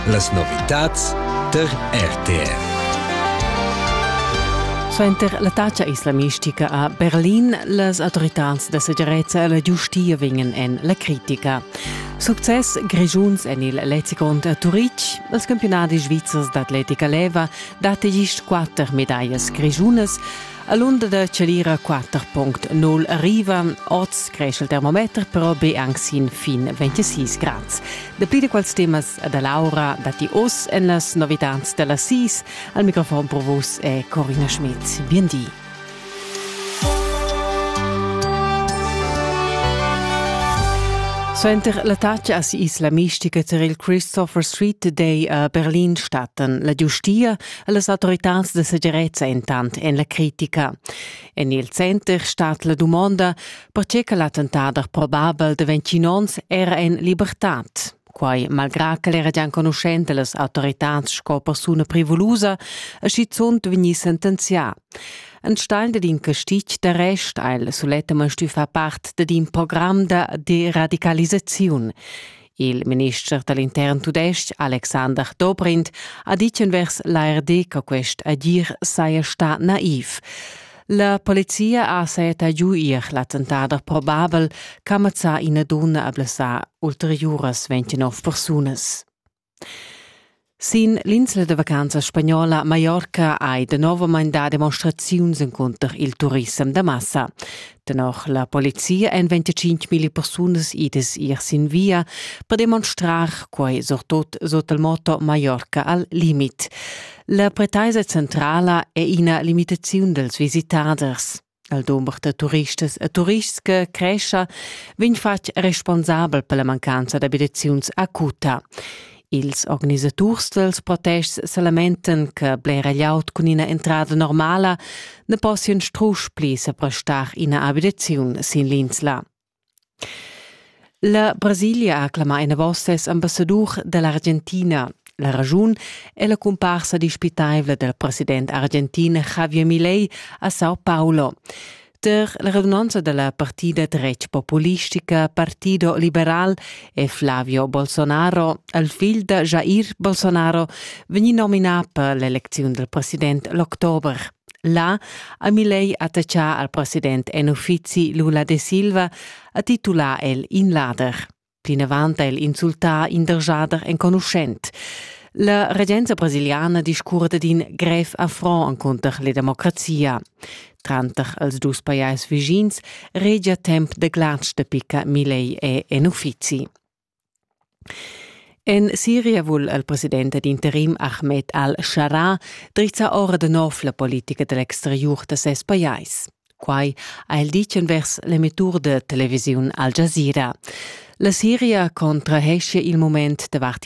Las novitads tar RTR. Suenter la taxa islamistica a Berlin, las autoritads da segirezza e la giustia vegnan en la critica. Success grischuns en il Lezigond a Turitg. Els campionadis svizzers d'atletica leva dat gist quatter medallas grischunas. All'onda da Celira 4.0 arriva oz cresce il termometer però be anche sin fin 26 grad. Dapli da quels temas da Laura datti oz en las novitads da las 6. Al microfon pro vos è Corina Schmidt. Bien di. Suenter l'attacca a isla mistica tar il Christopher Street Day a Berlin statten la giustia Las autoritads da segirezza entant en la critica. En il center stat la dumonda, pertge che l'attentader probabel da 21 onns era en libertad. Quai malgrà ch'el era già enconuschent las autoritads sco persuna privulusa e schizunt vegnì sentenzià. Ein Stein din Castic de Rest al suletta man stufa part de din program de deradicalisaziun. Il minister da l'intern tudestg Alexander Dobrindt ha ditg envers l'ARD che quest agir saja stà naiv. La polizia ha saetta giu ir l'attentader probabel che mazzà ina donna a blessà ulteriuras 29 persunas. Sin l'insla da vacanzas spagnola Mallorca hai danovamein dà demonstraziuns encunter il turissem da massa. Tenor la polizia èn 25.000 persunas idas ir sin via per demonstrar quai surtut sut il motto Mallorca al limit. La pretaisa centrala è ina limitaziun dals visitaders. Il dumber da turistas e turists che crescha vegn fatg responsabel per la mancanza d'abitaziuns acuta. Ils organisaturs dels protests se lamenten che blera glieud cun ina entrada normala ne possian strusch pli seprestar ina abitaziun sin l'insla. La Brasilia ha clamà enavos ses ambassadur da l'Argentina. La raschun è la cumparsa dispitaivla dal president argentin Javier Milei a Sao Paulo. Tar la radunanza da la partida dretg populistica Partido Liberal è Flavio Bolsonaro, il figl da Jair Bolsonaro, vegnì nominà per l'elecziun dal president l'october. Là ha Milei attachà al president en uffizi Lula de Silva a titular el in lader. Plinavant ha el insultà in dergiader enconuschent. La regenza brasiliana discurda d'in grev affront encunter la democrazia. Tranter els dus pajais vischins regia temp de glatsch de picca Milei e en uffizi. En Siria vul il president ed interim Ahmed al-Sharaa drizzar ora da nov la politica da l'exteriur da ses pajais. Quai ha el ditg envers l'emettur da televisiun Al Jazeera. La Siria contraheschia il mument davart